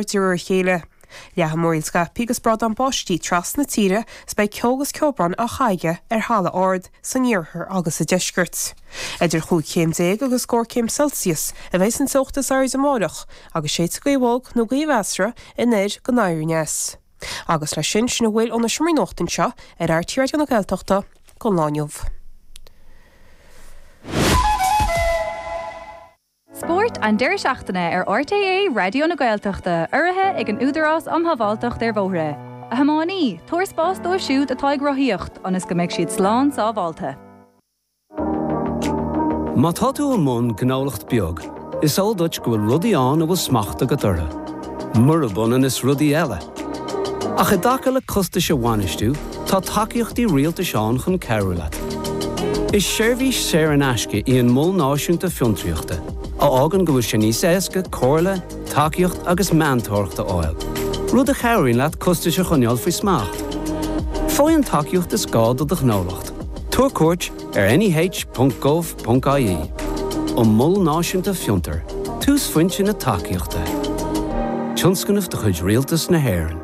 de réir a chéile leathfaidh múraíl scaipthe agus brádán báistí trasna tíre is beidh ceo agus ceobhrán á chaitheamh aige ar thalamh ard san iarthar agus sa deisceart. Idir chúig chéim déag agus scór céim Celsius a bheidh an teocht is airde amárach agus séidfidh gaoth bhog nó gaoth mheasartha anoir go anoir aneas. Agus leis sin, sin a bhfuil ón seomra nuachta anseo ar RTÉ Raidió na Gaeltachta don lá inniu. Spórt an deireadh seachtaine ar RTÉ Raidió na Gaeltachta, urraithe ag an Údarás Um Shábháilteacht ar Bhóithre. A thiománaí, tabhair spás dóibh siúd atá ag rothaíocht ionas go mbeidh siad slán sábháilte. Má tá tú i mbun gnólacht beag, is eol duit go bhfuil rudaí ann a bhfuil smacht agat orthu. Murab ionann is rudaí eile. Ach i dtaca le costais a bhainistiú, tá tacaíochtaí rialtais ann chun cabhrú leat. Is seirbhís saor in aisce í an Mol Náisiúnta Fiontraíochta, a fhágann go bhfuil sé níos éasca comhairle, tacaíocht agus meantóireacht a fháil, rud a chabhraíonn leat costais a choinneáil faoi smacht. Faigh an tacaíocht is gá do do ghnólacht. Tabhair cuairt ar neh.gov. ie. An Mol Náisiúnta Fiontair, túsphointe na tacaíochta. Tionscnamh de chuid Rialtas na hÉireann.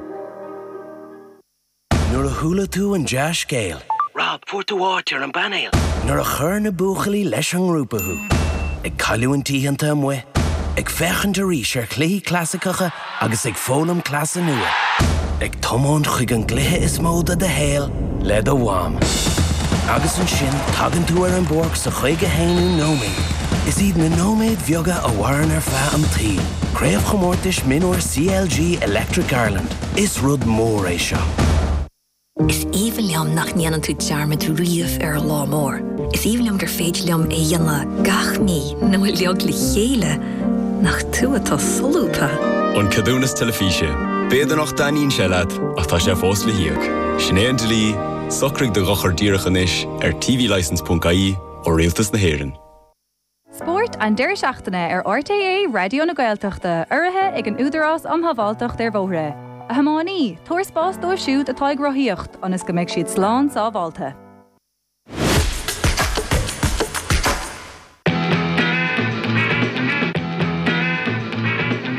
Nuair a chuala tú an dea-scéal. Rob, fuair tú áit ar an bpainéal! Nuair a chuir na buachaillí leis an ngrúpa thú. Ag cailliúint oícheanta amuigh. Ag féachaint arís ar chluichí clasaiceacha agus ag foghlaim cleasa nua. Ag tiomáint chuig an gcluiche is mó de do shaol le do mham. Agus ansin tagann tú ar an bpáirc sa chaoga haonú nóiméad. Is iad na nóiméid bheaga a mhaireann ar feadh an tsaoil. Craobhchomórtais Mionúir CLG Electric Ireland, is rud mór é seo. Is aoibhinn liom nach ndéanann tú dearmad riamh ar an lá mór. Is aoibhinn liom gur féidir liom é a dhéanamh gach mí nó uilig le chéile. Nach tú atá solúbtha! An Ceadúnas Teilifíse. B'fhéidir nach dtaitníonn sé leat ach tá sé fós le híoc. Sin é an dlí, socraigh do dhochar díreach anois ar tvlicence.ie ó Rialtas na hÉireann. Spórt an deireadh seachtaine ar RTÉ Raidió na Gaeltachta, urraithe ag an Údarás um Shábháilteacht ar Bhóithre. A thiománaí, tabhair spás dóibh siúd atá ag rothaíocht ionas go mbeidh siad slán sábháilte.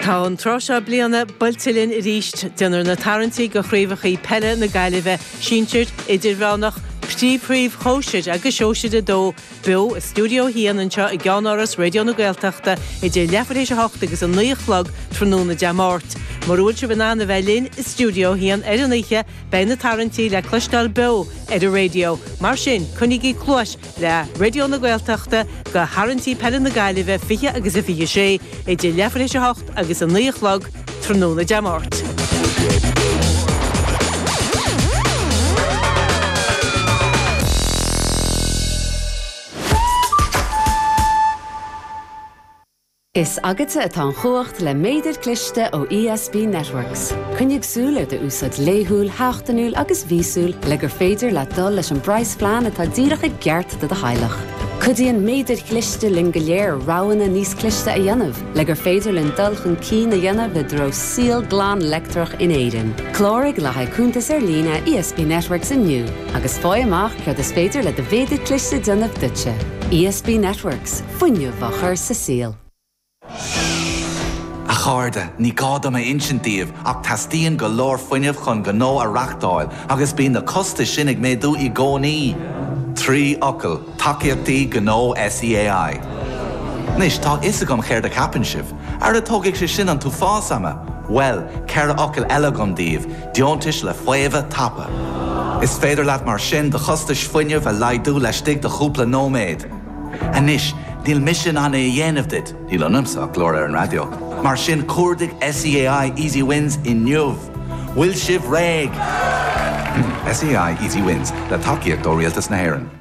Tá an tráth seo bliana buailte linn arís. Déanfar na tarraingtí do chraobhacha peile na Gaillimhe, sinsir, idirmheánach, príomhshóisir agus sóisir 2, Beo i Studio 1 anseo i gCeannáras Raidió na Gaeltachta idir leathuair théis a hocht agus a naoi a chlog tráthnóna Dé Máirt. Mura bhfuil sibh in ann a bheith linn i Studio 1 ar an oíche, beidh na tarraingtí le cloisteáil beo ar an raidió, mar sin coinnígí cluais le Raidió na Gaeltachta do tharraingtí peile na Gaillimhe 20 agus a 26 idir leathuair théis a hocht agus a naoi a chlog tráthnóna Dé Máirt. Is agatsa atá an chumhacht le méadair cliste ó ESB Networks. Coinnigh súil ar do úsáid laethúil, sheachtainiúil agus mhíosúil le gur féidir leat dul leis an bpraghas phlean atá díreach i gceart do do theaghlach. Cuidíonn méadair cliste linn go léir roghanna níos cliste a dhéanamh, Le gur féidir linn dul chun cinn a dhéanamh i dtreo saol glan leictreach in Éirinn, cláraigh le haghaidh cuntas ar líne ESB Networks inniu agus faigh amach céard is féidir le do mhéadar cliste a dhéanamh duitse. ESB Networks, fuinneamh á chur sa saol. A chairde, ní gá dom a insint daoibh ach teastaíonn go leor fuinnimh chun gnó a reachtáil agus bíonn na costais sin ag méadú i gcónaí. Trí fhocal. Tacaíochtaí Gnó SEAI. Anois, tá fhios agam céard a cheapann sibh. Ara tógfaidh sé sin an t-uafás ama! Bhuel, ceithre fhocal eile agam daoibh, deontais le faomhadh tapa. Is féidir leat mar sin do chostais fuinnimh a laghdú laistigh de chúpla nóiméad. Anois, níl mise in ann é a dhéanamh duit, níl ionamsa ach glór ar an raidió, mar sin cuardaigh SEAI Easy Wins inniu! Bhfuil sibh réidh? SEAI Easy Wins, le tacaíocht ó Rialtas na hÉireann.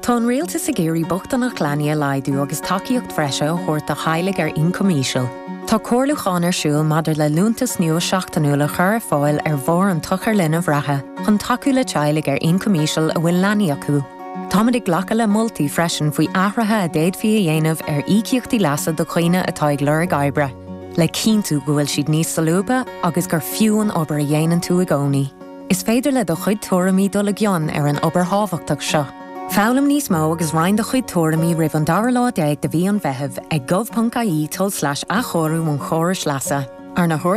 Tá an Rialtas ag iarraidh bochtaineacht leanaí a laghdú agus tacaíocht bhreise a thabhairt do theaghlaigh ar ioncam íseal. Tá comhairliúchán ar siúl maidir le liúntas nua seachtainiúil a chur ar fáil ar bharr an tsochair linbh reatha chun tacú le teaghlaigh ar ioncam íseal a bhfuil leanaí acu. Táimid ag glacadh le moltaí freisin faoi athruithe a d'fhéadfaí a dhéanamh ar íocaíochtaí leasa do dhaoine atá ag lorg oibre, le cinntiú go bhfuil siad níos solúbtha agus gur fiú an obair a dhéanann tú i gcónaí. Is féidir le do chuid tuairimí dul i gcion ar an obair thábhachtach seo. Foghlaim níos mó agus roinn do chuid tuairimí roimh an dara lá déag de mhí Dheireadh Fómhair ag gov.ie tulslais athchóiriú an chórais leasa, arna.